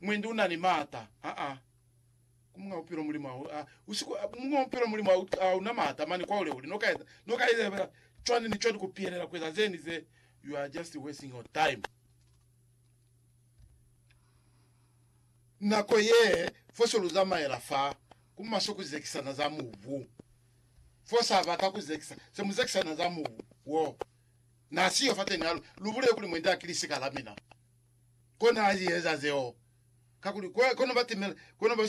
Mwendi una ni maata aa ku munga bupilo Mulimu a u a usiko a ku munga bupilo Mulimu a u a una maata mani kwa ule uli no ka no ka eza cwani ni cwani ku piyelela ku eza zeni ze you are just wasting your time nako ye fo se lu zamaela fa ku maswe ku zekisana za mubu fo sa bata ku zekisa se mu zekisana za mubu wo na siyo fa teni alu lu bulele kuli mwendi a kilisi ka la mina. Kona a zieza zeo, kakuli kwa kono ba timela, kono ba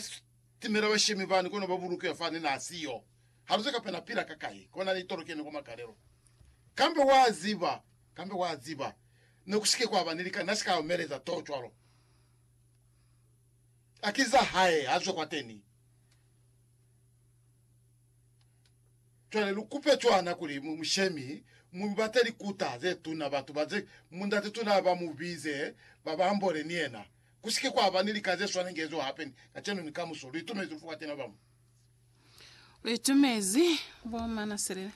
timela bashemi bani, kono ba bulukiwa fani na siyo. Haluze kapa na pila ka kai, kona ni tolokeni kwa makalelo. Kambe wa ziba, kambe wa ziba, ne ku si ke kwa ba ni lika, na si ka omeleza too cwalo. Akiza hae, ha zwe kwateni. Cwale lu kupe cwana kuli mu, mu shemi, mu bate likuta ze tuna, batu ba ze, Mundate tuna ba mu bize, ba ba ambole ni yena. Ku si ke kwa ba ni lika ze swana nge zo hape ni, kacenu ni kamuso. Lu itumezi fuka tina ba mu. Lu itumezi, bo Manaselele.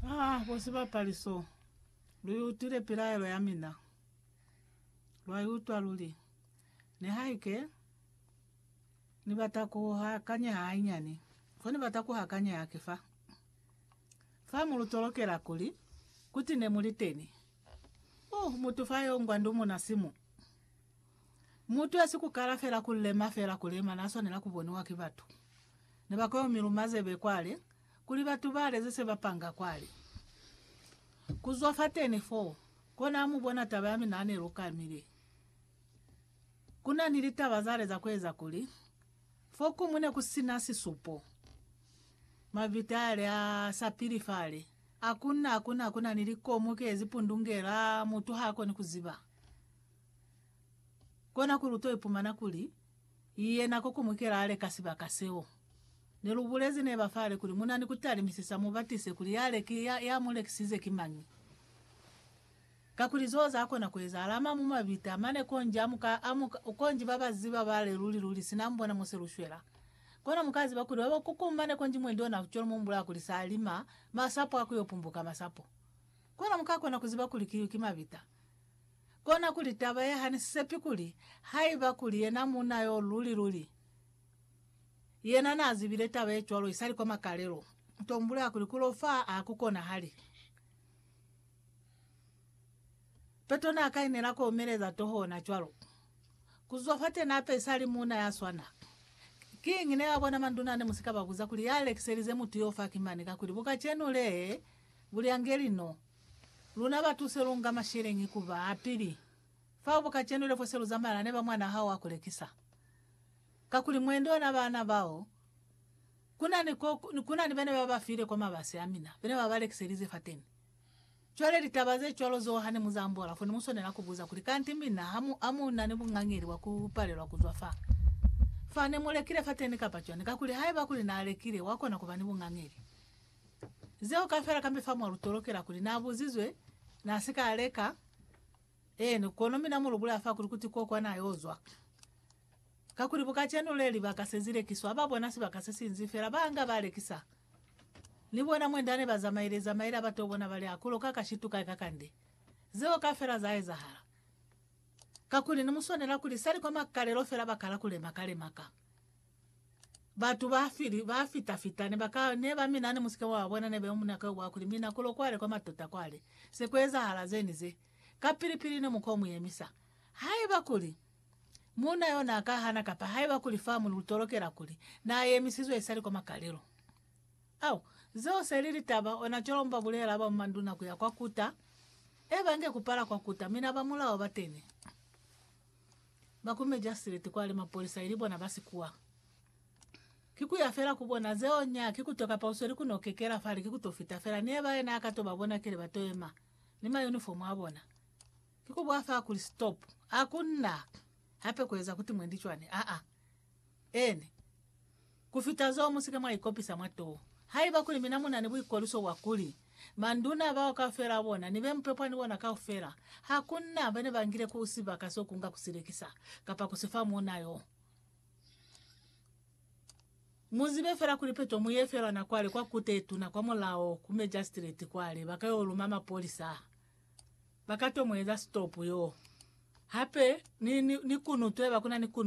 Ah, bo sibapali so. Lu i utwile pilaelo ya mina. Lwa i utwa luli. Nihaike. Ni bata ku hakanyeha hainyani. Fo ni bata ku hakanyeha ki fa. Fa mu lu tolokela kuli, kuti ne mu li teni. Uh, mutu fa yo ngwa ndumuna simu. Mutu ya si ku kala fela ku lema fela ku lema na swanela ku boniwa ki batu. Ne ba ka yo mi luma zebe kwale, kuli batu ba leze se ba panga kwale. Ku zwa fateni foo, kona ha mu bona taba ya mina ha ne lu kamile. Ku na ni litaba zale za ku eza kuli, fo kuñwi ne ku si na sisupo. Mavita yale a sapili fale, a kunna, a kunna, ku na ni likomu ke zi pundungela, mutu ha koni ku ziba. Kona kuli u to ipumana kuli, yena ko kuñwi kela a leka sibaka seo. Ne lu bulezi neba fale kuli, Mu na ni ku talimisisa, mu batise kuli yale ki, ya, ya mu lekisize ki mañi. Kakuli zeo za kona ku ezahala ama mu mabita mane konji a muka a mu konji ba ba ziba ba le luli luli sina mu bona muse lu shwela. Kono mu ka ziba kuli ba ba kuku mane konji mwendi ona ku colo mu mbula kuli sa lima masapo a ku yo pumbuka masapo. Kono mu ka kona ku ziba kuli kiyu ki mabita. Kona kuli taba ye ha ni sepi kuli haiba kuli yena muuna yo luli luli yena na zibile taba ye cwalo isali kwa makalelo, to mbula kuli ku lo fa ha ku konahali. Petro n'a kainela ku omeleza toho ona cwalo. Ku zwa fate n'a pesali muuna ya swana. Kiñi ne ba bona manduna ne mu si ka ba buza kuli ya lekiselize mutu yo faki mane kakuli bu kacenu le bu lyangeli no luna ba tuse lu nga masheleñi ku ba a pili fao bu kacenu le fo se lu zamala ne ba mwan'a hao wa ku lekisa? Kakuli mwendi ona baana bao ku na ni ko ku na ni bene ba ba file kwa mabasi a mina bene ba ba lekiselize fateni. Cwale litaba ze cwalo zeo hane mu zambola, fo ne mu swanela ku buza kuli, Kanti mina ha mu, ha mu na ni bungangeli bwa ku palelwa ku zwa fa, fa ne mu lekile fateni kapa cwani? Kakuli haiba kuli n'a lekile, wa kona ku ba ni bungangeli. Zeo kafela kambe fa mwa lu tolokela kuli, N'a buzizwe, n'a si ka leka. Eeni, kono mina mu lu bulaya fa kuli, Kuti ko kwa n'a yo zwa. Kakuli bu kacenu le libaka se zilekiswa, ba bona sibaka se sinzi fela, ba nga ba lekisa. Ni bona mwe nda ne ba zamaile zamaila ba to bona bali akulo ka kashitu kai ka kande. Zeo ka fela za ezahala. Kakuli ne mu swanela kuli sali kwa makalelo fela ba kala ku lema kale maka. Batu ba fili, ba fita fita, ne ba ka, ne ba mina ne musike mwa ba bona ne beo muna ka uwa kuli mina kulo kwale kwa matota kwale se ku ezahala ze ni ze. Kapili pili ne mu ko mu yemisa. Haiba kuli. Muuna yo n'a ka hana kapa haiba kuli fa mu lutolokela kuli n'a yemisizwe isali kwa makalelo. Au, zeo se li litaba, ona cwalo mu ba bulela ba manduna ku ya kwa kuta, e bange ku pala kwa kuta, mi na ba mulao bateni. Ba ku mejastreti kwa li mapolisa ili bona ba sikuwa. Ki ku ya fela ku bona, zeo nya ki ku to kapa u sweli ku no kekela fale, ki ku to fita fela. Ni eba ye n'a ka to ba bona kili ba to yema ni mayunifomu a bona. Ki ku bwa fa kuli stop. A ku na hape ku eza kuti mwendi cwani. Aa. Eeni. Ku fita zeo mu si ke mwa ikopisa mwa too. Haiba kuli mina mu na ni buikolwiso bwa kuli, manduna bao kaufela a bona, ni be mu pepwa ni bona kaufela, ha ku na bene ba ngile ku sibaka seo ku nga ku si lekisa, kapa ku si fa muuna yo. Mu zibe fela kuli peto mu ye fela na kwale kwa Kute ye Tuna kwa mulao, ku mejastreti kwale, ba ka yo luma mapolisa. Ba ka to mu eza stop yoo. Hape ni, ni, ni kunutweba, kuna ni kunu,